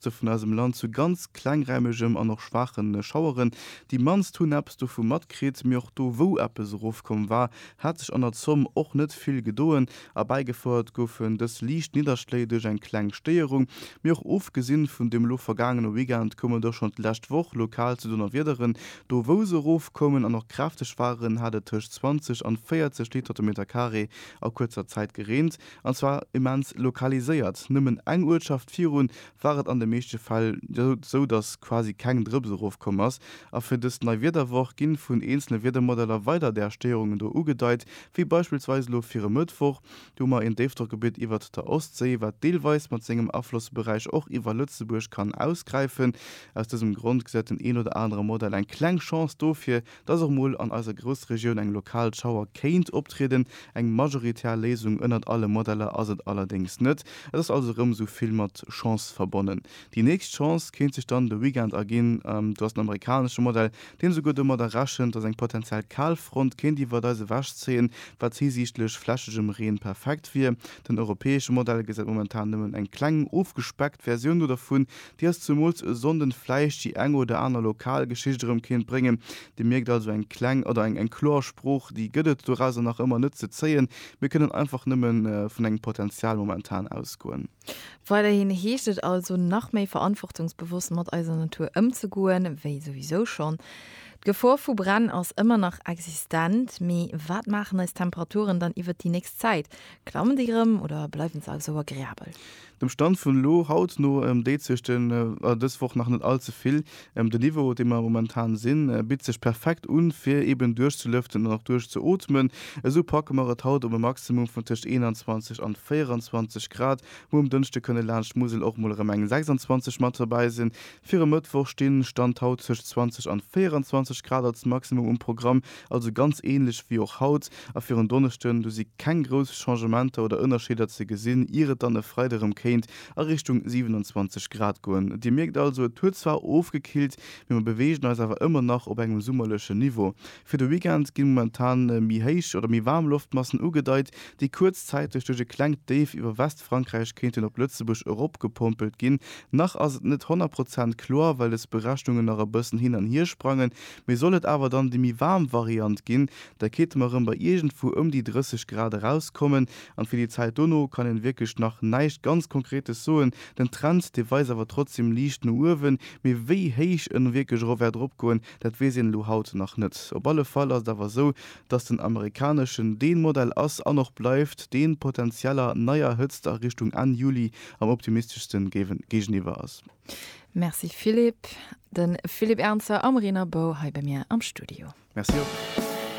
D'Küste vun eisem Land zu ganz klengräimegem an och schwaache Schaueren. Déi mannst hunn eppes dovu matkritt. Mee och do, wou eppes erofkomm war, hat sech an der Zomm och net vill gedoen. Erbäigefouert goufen dës liicht Nidderschléi duerch eng kleng Stéierung. Mee och ofgesinn vun deem elo vergaangene Weekend koum et och schonn d'lescht Woch lokal zu Donnerwiederen. Do, wou se erofkoumen an och kräfteg waren, hat et tëscht 20 an 40 Liter de Metercarré a kuerzer Zäit gereent. An zwar immens lokaliséiert. Nëmmen eng Uertschaft virun war et an de meeschte Fäll esou, datt quasi keng Drëps erofkomm ass. A fir dës nei Wiederwoch ginn vun eenzele Wiedermodeller weider där Stéierungen do ugedeit, wéi beispillsweis elo fir e Mëttwoch. Do hu mer een Déifdrockgebitt iwwert der Ostséi, wat deelweis mat sengem Aflossberäich och iwwer Lëtzebuerg kann ausgräifen. Aus dësem Grond gesäit den een oder anere Modell eng kleng Chance dofir, dass och mol an eiser Groussregioun eng lokal Schauer kéint optrieden. Eng majoritär Léisung ënnert alle Modeller ass et allerdéngs net. Et ass also erëm esou vill mat Chance verbonnen. Déi nächst Chance kéint sech dann de Weekend erginn. Do ass den amerikanesche Modell, deen esouguer domadder rechent, dass eng potentiell Kalfront kéint iwwert eis ewechzéien, wat hisiichtlech flächegem Reen perfekt wier. Den europäesche Modell gesäit momentan nëmmen eng kleng ofgespeckt Versioun do dervun, Déi ass zemools e Sonnden vläicht déi eng oder aner lokal Geschicht erëm kéint bréngen. Dir mierkt also, eng kleng oder eng eng kloer Sprooch, déi gëtt et dorauser nach ëmmer net ze zéien. Mir kënnen einfach nëmme vun engem Potenzial momentan ausgoen. Weiderhin heescht et also, nach méi verantwortungsbewosst mat eiser Natur ëmzegoen, wéi souwisou schonn. D'Gefor vu Bränn ass ëmmer nach existent. Mee wat maachen eis Temperaturen dann iwwert déi nächst Zäit? Klammen déi erëm oder bleiwen se also agreabel? Dem Stand vun elo, haut, no deet sech dës Woch nach net all ze vill. De Niveau, op deem mer momentan sinn, bitt sech perfekt un, fir eeben duerchzelëften an och duerchzeootmen. Esou packe mer et haut op e Maximum vun tëscht 21 an 24 Grad, wou um Dënschde kënne laanscht d'Musel och mol erëm eng 26 mat derbäi sinn. Fir e Mëttwoch stinn, Stand haut, zwëscht 20 an 24 Grad als Maximum um Programm, also ganz ähnlech wéi och haut. A fir en Donneschden, du si keng grouss Changementer oder Ënnerscheeder ze gesinn, ier et dann e Freide rëm kéint a Richtung 27 Grad goen. Dir mierkt also, et huet zwar ofgekillt, mee mer beweegen eis awer ëmmer nach op engem summerlechen Niveau. Fir de Weekend gi momentan méi héich oder méi waarm Loftmassen ugedeit, déi kuerzzäiteg duerch e klengt Déif iwwer Westfrankräich kéinten op Lëtzebuerg eropgepompelt ginn. Nach ass et net 100 Prozent kloer, well des Berechnungen nach e bëssen hin an hier sprangen, mee sollt et awer dann déi méi waarm Variant ginn, da kéinte mer erëm bei iergendwou ëm déi 30 Grad erauskommen. An fir déi Zäit dono kann een wierklech nach näischt ganz Konkretes soen. Den Trend, dee weist awer trotzdem liicht no uewen, mee wéi héich en wierklech erof wäert eropgoen, Dat weess een elo haut nach net. Op alle Fall ass et awer esou, datt den amerikaneschen dee Modell ass an och bleift, dee potenzieller neier Hëtzt a Richtung Enn Juli am optimisteschste géigeniwwer ass. Merci Philippe. De Philippe Ernzer am Renabou hei bei mir am Studio. Merci och.